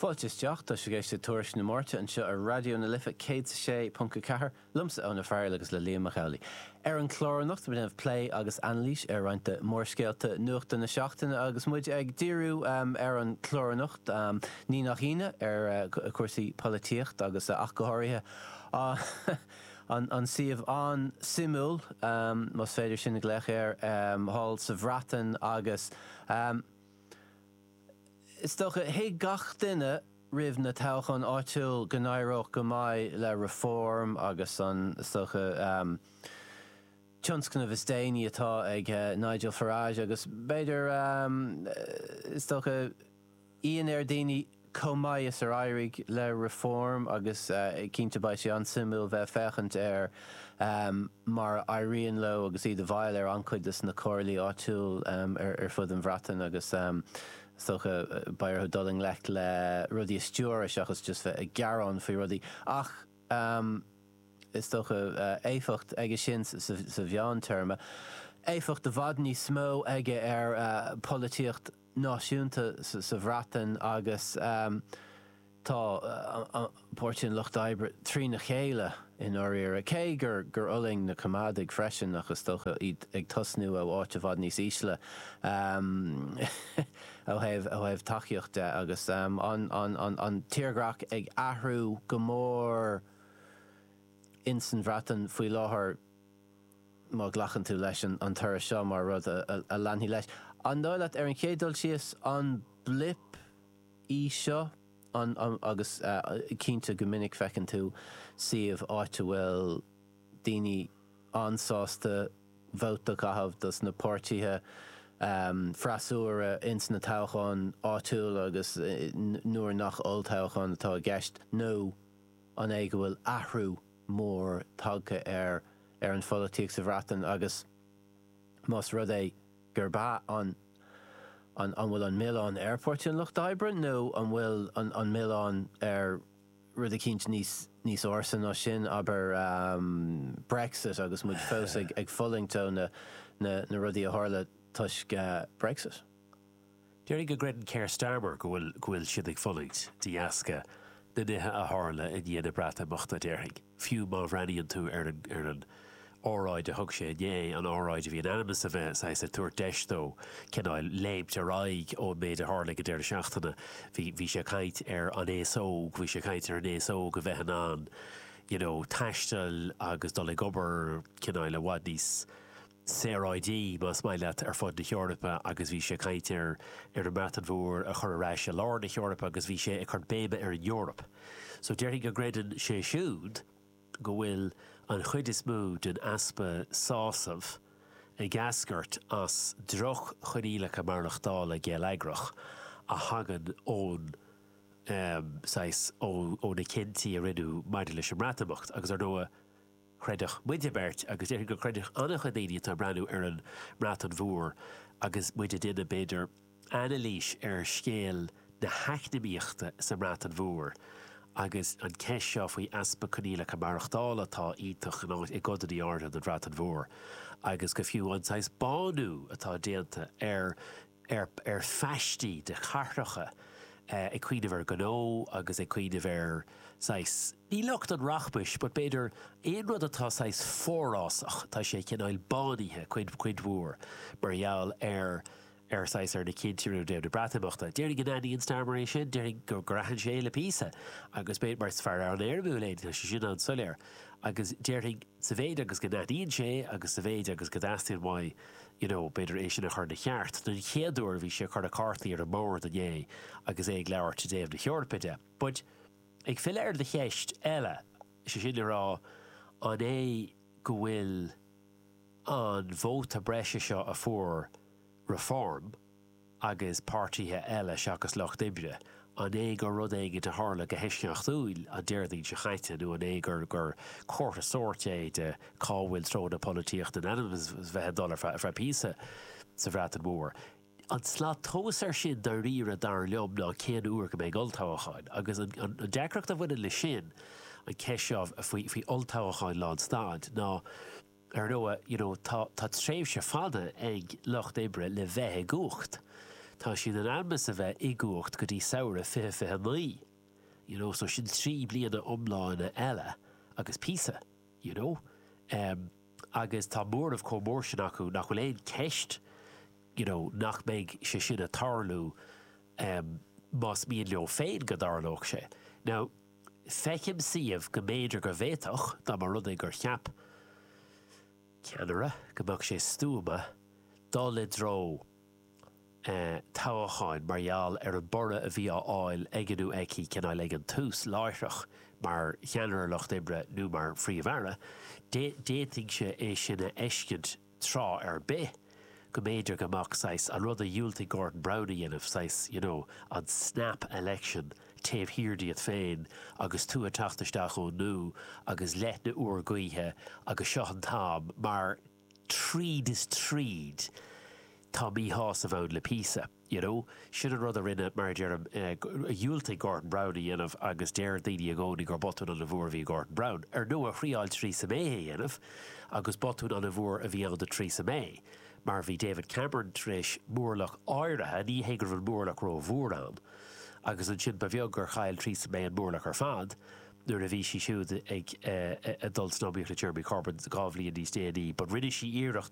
Fáilte isteach, tá sibh ag éisteacht le Tuairisc na Máirte anseo ar Raidió na Life, 106.4, liomsa Eoin Ó Fearghaíl agus le Liam Mac Amhlaigh. Ar an chlár anocht ag déanamh plé agus anailís ar roinnt de mhórscéalta nuachta na seachtaine agus muid ag díriú ar an chlár anocht, ní nach ionadh, ar chúrsaí polaitíochta agus ach go háirithe an suíomh an-suimiúil, más féidir sin a ghlaoch air, thall sa Bhreatain agus. Is dócha, thuig gach duine roimh na toghcháin áitiúil go n-éireodh go maith le Reform agus an, is dócha, tionscnamh is déanaí atá ag Nigel Farage agus b'fhéidir, is dócha, ionadh ar dhaoine. chomh maith is ar éirigh le Reform agus cinnte beidh sé an-suimiúil bheith ag féachaint ar mar a éiríonn leo agus iad i bhfeighil ar an-chuid dos na comhairlí áitiúil ar fud an Bhreatain agus is dócha beidh orthu dul i ngleic le rudaí a stiúradh seachas just bheith ag gearán faoi rudaí ach is dócha éifeacht aige sin sa mheántéarma, éifeacht i bhfad níos mó aige ar pholaitíocht. náisiúnta sa Bhreatain agus tá Páirtí an Lucht Oibre trína chéile i ndáiríre, cé gur fhulaing na Coimeádaigh freisin ach is dócha iad ag tosnú ó áit i bhfad níos ísle ó thaobh tacaíocht de agus an tírdhreach ag athrú go mór insan Bhreatain faoi láthair. má ghlacann tú leis an toradh seo mar rud a leanfaidh leis, an dóigh leat, ar an chéad dul síos, an blip í seo? An, agus cinnte go minic feiceann tú suíomh, áit a bhfuil daoine an-sásta vote a chaitheamh dos na páirtithe freasúra ins na toghcháin áitiúil agus nuair nach olltoghchán atá i gceist, nó an é go bhfuil athrú? mór tagtha ar ar an pholaitíocht sa Bhreatain agus más rud é gurb ea, an an an bhfuil an milleán ar Pháirtí an Lucht Oibre nó an bhfuil an an milleán ar rud eicínt níos níos ársa ná sin, abair, Brexit agus muid fós ag ag fulaingt ó na na na rudaí a tharla toisc Brexit? Déarfainn go gcreideann Keir Starmer go bhfuil go bhfuil siad ag fulaingt de dheasca na nithe a tharla i ndiaidh na Breatimeachta, déarfainn, fiú má bhreathnaíonn tú ar an ar an óráid a thug sé inné, an óráid a bhí in ainm is a bheith saghas ag tabhairt deis dó cineál léimt ar aghaidh ón méid a tharla ag an deireadh seachtaine. Bhí bhí sé ag caint ar an aos óg, bhí sé ag caint ar an aos óg a bheith in ann you know taisteal agus dul ag obair cineál i bhfad níos saoráidí, más maith leat, ar fud na hEorpa agus bhí sé ag caint ar an mBreatain Mhór a chur ar ais i lár na hEorpa agus bhí sé ag cur béime ar an Eoraip. So déarfainn go gcreideann sé siúd go bhfuil an chuid is mó den easpa sásamh ag eascairt as droch-choinníollacha maireachtála geilleagrach a thagann ón saghas, ó na cinntí a rinneadh maidir leis an mBreatimeacht agus ar ndóigh, chreidfeadh muid beirt, agus déarfainn go gcreidfeadh an-chuid daoine atá ag breathnú ar an mBreatain Mhór agus muid ag déanamh, b'fhéidir, anailís ar scéal na heacnamaíochta sa mBreatain Mhór agus an ceist seo faoi easpa coinníollacha maireachtála atá iontach i gcodanna áirithe den Bhreatain Mhór agus go fiú an saghas bánú atá déanta ar ar phaistí de chathracha ag cuimhneamh ar ghnó agus ag cuimhneamh ar saghas, ní lucht an rachmais but b'fhéidir aon rud atá saghas forásach, tá sé cineál bánaithe cuid, cuid mhór mar gheall ar, ar saghas ar na cinntí a rinneadh i dtaobh na Breatimeachta. Déarfainn go n-aithníonn Starmer é sin, déarfainn go mbraitheann sé le píosa agus b'fhéidir, mar is fear an-éirimiúil é, tá sé sin an-soiléir agus déarfainn sa mhéid agus go n-aithníonn sé agus sa mhéid agus go dteastaíonn uaidh, you know, b'fhéidir é sin a chur ina cheart, den chéad uair bhí sé ag cur na cártaí ar an mbord inné agus é ag labhairt i dtaobh na hEorpa de. But, ag filleadh ar do cheist eile, is é sin le rá, an é go bhfuil an vóta breise seo a fuair Reform, agus páirtithe eile seachas Lucht Oibre, an é gur rud éigin a tharla go heisceachtúil an Déardaoin seo chaite nó an é gur gur comhartha sóirt é de cá bhfuil treo na polaitíochta in ainm 's bheith ag dul ar feadh píosa sa Bhreatain Mhór? An tslat tomhas ar sin dairíre dar liom ná cén uair go mbeidh olltoghacháin, agus an deacracht a bhaineann leis sin, an ceist seo faoi olltoghacháin lán stad, ná, Ar ndóigh, you know, tá tréimhse fada ag Lucht Oibre le bheith i gcumhacht. Tá siad in ainm is a bheith i gcumhacht go dtí samhradh fiche fiche a naoi, you know, so sin trí bliana iomlána eile agus píosa, you know. Agus tá móramh chomh mór sin acu nach bhfuil aon cheist, you know, nach mbeidh sé sin ag tarlú más mian leo féin go dtarlódh sé. Now. Feicim suíomh go mb'fhéidir go bhféadfadh, dá mba rud é gur cheap ceannaire go mbeadh sé stuama dul i dtreo toghacháin mar gheall ar an borradh a bhí á fháil aige nó aici, cineál, ag an tús, láithreach mar cheannaire Lucht Oibre nó mar Phríomh-Aire, d'fhéadfainnse é sin a fheiscint. tráth ar bith go mb'fhéidir go mbeadh saghas, an rud a dhiúltaigh Gordon Brown a dhéanamh, saghas, you know, an snap election taobh thiar díot féin agus tú ag teacht isteach úrnua agus leoithne úr gaoithe agus seo an t-am mar tríd is tríd tá míshásamh ann le píosa. you know. Sin an rud a rinne, mar a deirim, a dhiúltaigh Gordon Brown a dhéanamh agus deir daoine i gcónaí gur botún an-mhór a bhí i Gordon Brown. Ar ndóigh, thriáil Theresa May a dhéanamh agus botún an-mhór a bhí ann do Theresa May mar bhí David Cameron tar éis móramh áirithe, ní hé go raibh an móramh ró-mhór ann, agus ansin ba bheag gur chaill Theresa May an móramh ar fad nuair a bhí sí siúd ag dul san iomaíocht le Jeremy Corbyn dhá bhliain níos déanaí, but rinne sí iarracht